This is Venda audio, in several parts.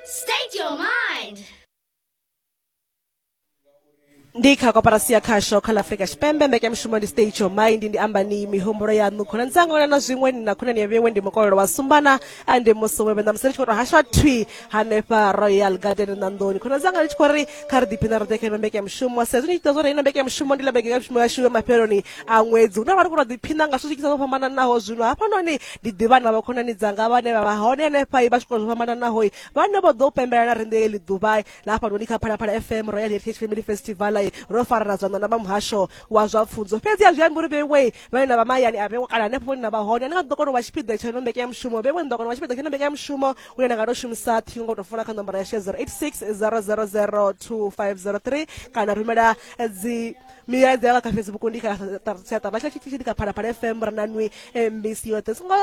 State your mind. ndi kha koporasi ya khasho kha ḽa afurika tshipembe mbekanyamushumo ndi state your mind ndi amba ni mihumbulo yaṋu khonani dzanga na na zwiṅwe ni na khonani ya vhewe ndi mukolelo wa sumbana ande musi wewe na musi ri tshi khou tou hasha thwi hanefha royal garden ṋanḓoni khonani dzanga ri tshi khou ri kha ri ḓiphina ri ḓe kha ino mbekanyamushumo sa zwi ni tshi ḓa zwo ri ino mbekanyamushumo ndi ḽa mbekanyamushumo yashu ya mafheloni a ṅwedzi hune ra vha ri khou tou ḓiphina nga zwithu zwi kisa zwo fhambananaho zwino hafhanoni ndi ḓivha na vhakhonani dzanga vhane vha vha hone henefha vha zwikolo zwo fhambananaho vhane vho ḓo pembela na riṋe eli ḓuvha na hafhanoni kha phalaphala fm royal heritage family festival ro farana zwanḓa na vha muhasho wa zwa pfunzo fhedzi a zwi ambi uri vhewe vhane na vha mahayani a vhewe kana hanefho vhone na vha hone ane nga ḓo kona u vha tshipiḓa tsha ino mbekanyamushumo vhewe ni ḓo kona u vha tshipiḓa tsha ino mbekanyamushumo une na nga to shumisa ṱhingo ngo to funa kha nomboro ya she 086 000 2503 kana rumela dzi milaedza ya vha kha facebook ndi kha siaṱa vha tshitshi ndi kha phalaphala fm ra nanwi mbc yoṱhe songo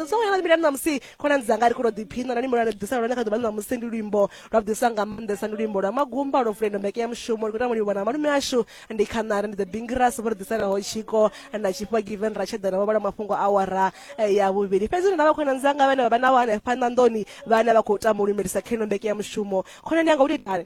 songo yana milani ṋamusi khonani dzanga ri khou tou ḓiphina nani mulani ḓisa lone kha ḓuvha ṋamusi ndi luimbo lwa ḓisa nga maanḓesa ndi luimbo lwa magumba lwo fulendo mbeke ya mushumo ndi khou tama livhona malume ashu ndi khanari ndi the bingras vho ri ḓisanaho tshiko na tshifha given ra tshedana vho vhala mafhungo awara eh, ya vhuvhili fhedzi ndi na vha khonani dzanga vhane vha vha nawo hanefha ṋanḓoni vhane vha khou tama u lumelisa kheno mbeke ya mushumo khonani yanga u tou itani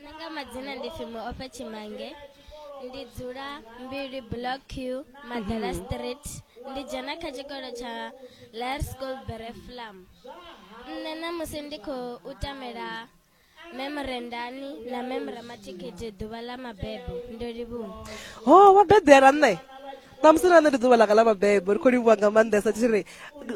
nṋe nga madzina ndi pfi muofha tshimange ndi dzula mbili block q madala mhm. street ndi dzhena kha tshikolo tsha lar school bereflam nṋe namusi ndi khou tamela memorendani na memoramatikete ḓuvha ḽa mabebo ndo livhuwa ho wa bebela nṋe ṋamusi na nṋe ndi ḓuvha langa ḽa mabebo ri khou livhuwa nga maanḓesa tshi ri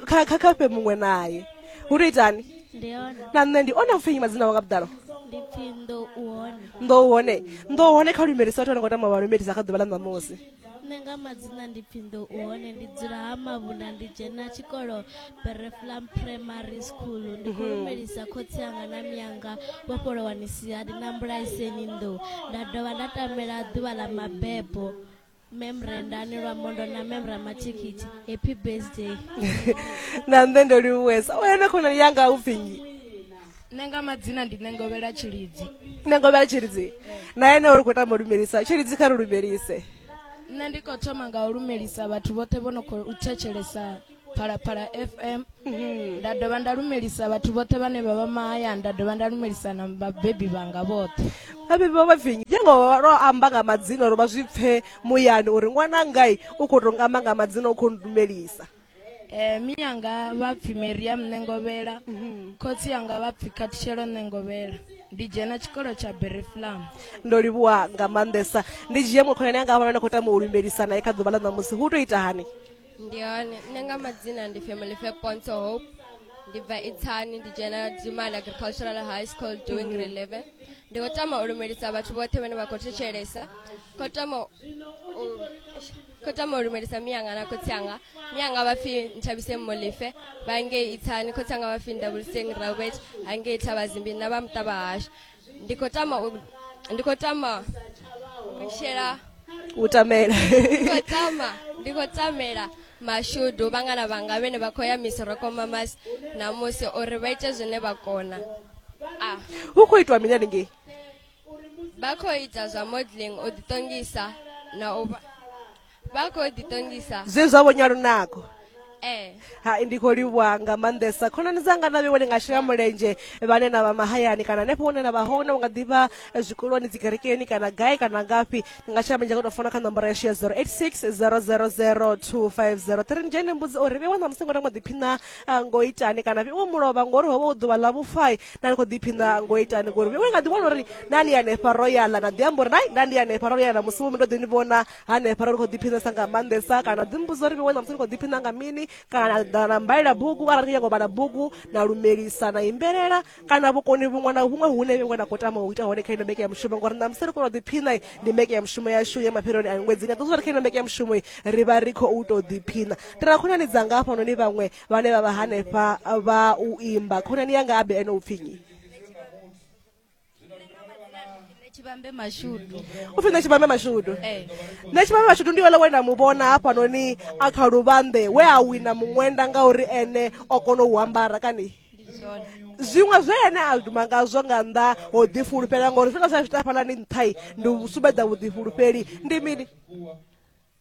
kha kha kha fhe muṅwe naye hu tou itani ndi hone na nṋe ndi one a pfenyi madzina wanga vhuḓalo ndi pfi ndo u hone ndo hone ndo hone kha lumelisa vhathu vha no ngo tama vha lumelisa kha ḓuvha ḽa ṋamusi nṋe nga madzina ndi pfi ndo u hone ndi dzula ha mavhunda ndi dzhena tshikolo bereflam primary school ndi khou lumelisa khotsi anga na miyanga vho fholowani sihadi na mbulaiseni ndo nda dovha nda tamela ḓuvha ḽa mabebo mem rendani lwa mondo na mem ramatikiti happy birthday na nṋe ndo livhuwesa o yone khonani yanga u pfi nnyi nṋe nga madzina ndi nengovhela tshilidzi nengovhela tshilidzi na ene uri khou tama u lumelisa tshilidzi kha ri lumelise nṋe ndi khou thoma nga u lumelisa vhathu vhoṱhe vho no khou thetshelesa phalaphala fm nda dovha nda lumelisa vhathu vhoṱhe vhane vha vha mahayani nda dovha nda lumelisa na vhabebi vhanga vhoṱhe vhabebi vha vhavinyi njengo ro amba nga madzina uri vha zwi pfe muyani uri ṅwana ngai u khou tou amba nga madzina u khou ndumelisa um miyanga vha pfi mariam ṋengovhela mhm. khotsi yanga vha pfi khathishelo ṋengovhela ndi dzhena tshikolo tsha bereflam ndo livhuwa nga maanḓesa ndi dzhie mukhonani anga a vhona ni khou tama u lumbelisana e kha ḓuvha ḽa ṋamusi hu tou ita hani ndi hone nṋe nga madzina ndi family fair ponto hope ndi bva itsani ndi dzhena dzimali agricultural high school doing grade 11 ndi khou tama u lumelisa vhathu vhoṱhe vhane vha khou thetshelesa khou tama u- khou tama u lumelisa miyanga na khotsi anga miyanga vha pfi nthabise mmolefe vha ngei itsani khotsi anga vha pfi ndavuliseng robert ha ngei thavhazimbi na vha muṱa vha hashu ndi khou tama u- ndi khou tama u shela u tamela ndi khou tama ndi khou tamela mashudu vhangana vhanga vhene vha khou ya misiroko mamas namusi uri vha ite zwine vha kona a hu khou itwa mini haningei vha khou ita zwa modeling u ḓiṱongisa na u vha vha khou ḓiṱongisa zwe zwa vhonya lunako Eh. hai ndi khou livhuwa nga maanḓesa khonani dzanga na vhewe ndi nga shela mulenzhe vhane na vha mahayani kana hanefho hune na vha hone u nga ḓivha eh, zwikoloni dzikerekeni kana gai kana ngafhi ndi nga shela mulenzhe nga tou fona kha nomboro yashu ya 086 000 2503 ni dzhene mbudzi uri vhewe na musingo na ngo ḓiphina ah, ngo itani kana vhewe mulovha ngori ho vha u ḓuvha ḽa vhufai na ni khou ḓiphina ngo itani ngori vhewe nga ḓiwana uri na ni hanefha royala na ḓi amba uri nai nda ndi hanefha royala musi wo mi ndo ḓi ni vhona hanefha ra ri khou ḓiphinesa nga maanḓesa kana dzimbudzo ri vhewe namusi ri khou ḓiphina nga mini kana na mbalela bugu arali ri nyago vhala bugu na lumelisa na imbelela kana vhukoni vhuṅwe na vhuṅwe hune vhengwe na khou tama u ita hone kha ino mbeke ya mushumo ngori namusi ri kona u ḓiphina ndi mbeke ya mushumo yashu ya mafheloni a ṅwedzi nga ḓozwa ri kha ino mbeke ya mushumo ri vha ri khou tou ḓiphina ndi na khonani dzanga hafhanoni vhaṅwe vhane vha vha hanefha vha u imba khonani yanga abe ene u pfinyi tshivhambe mashudu upfi nṋe tshivhambe mashudu eh. nṋe tshivhambe mashudu ndi wele we na mu vhona hafhanoni a kha luvhambe we a wina muṅwenda ngauri ene o kona u ambara kani zwiṅwe zwe ene a duma ngazwo nga nnḓa ho ḓifulufhela ngauri zwi nga sa zwi tafhalani nṱhai ndi u sumbedza vhuḓifulufheli ndi mini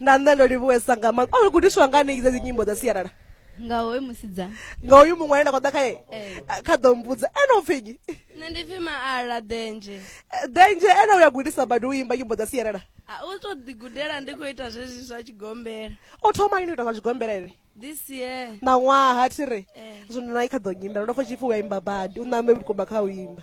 nda nṋe ndo livhuwesa nga maanḓa o gudiswa nga ni dze dzi nyimbo dza sialala nga hoyu musidzana nga hoyu muṅwe ane nda khou ḓa khae eh. kha ḓo mbudza ene u pfinyi nṋe ndi pfi maala denje eh, denje ene u ya gudisa badi u imba nyimbo dza sialala u to ḓigudela ndi khou ita zwezwi zwa tshigombela o thoma lini u ita zwa tshigombela ene this year maṅwaha thi re eh. zwino na i kha ḓo nyimbela ndo pfa tshipfi u ya imba badi u ṋambe vhukuma kha u imba